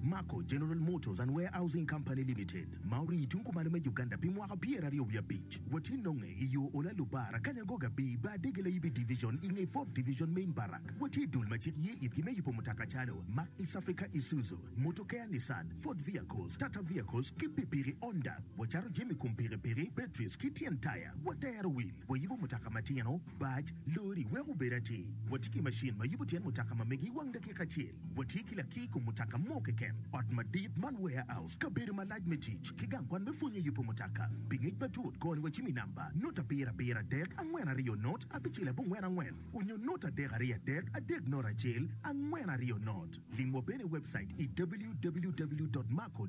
Mako General Motors and Warehousing Company Limited ma orii tung kumalo me Uganda pi mwaka pyer aryo wiye abic wa tye nonge i yo Ola Lubar akanya go Gabii bar dege Layibi Division i nge Ford Division Main Barrack wa tye dul ma cik ye itgi me yubo mutoka calo Mack East Africa Isuzu Motokea Nissan Ford Vehicles Tata Vehicles ki Pipiki Honda wa cato jami kom piki piki Batteries ki tyen taya wa tero wil wa yubo mutoka matino Baj Lori weko obed atir wa tye ki macin ma yubo tyen mutoka ma megi i wang dakika acel. Watye ki lakir i kom mutoka mo keken, ot madit man, warehouse, kabedo malac me tic, ki gang kwan me pwonyo yubo mutoka. Pi ngec matut, kor ni wa cim i namba, nut abiro abiro adek angwen aryo nut abicel abongwen angwen, onyo nut adek aryo adek adek nut acel angwen aryo nut. Lim wa bene i webcait i www.marco.ug.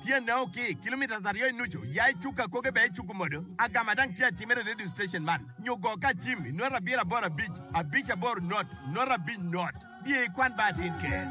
Tyene o ki kilometres aryo i nucu, ya i cuk akoge bene icuku modo. Agama dang tye atimere i radio station man, nyo go ka acim i nota abiro aboro abic, abic aboro not, not abic not. Biye ikwan ba atin ker.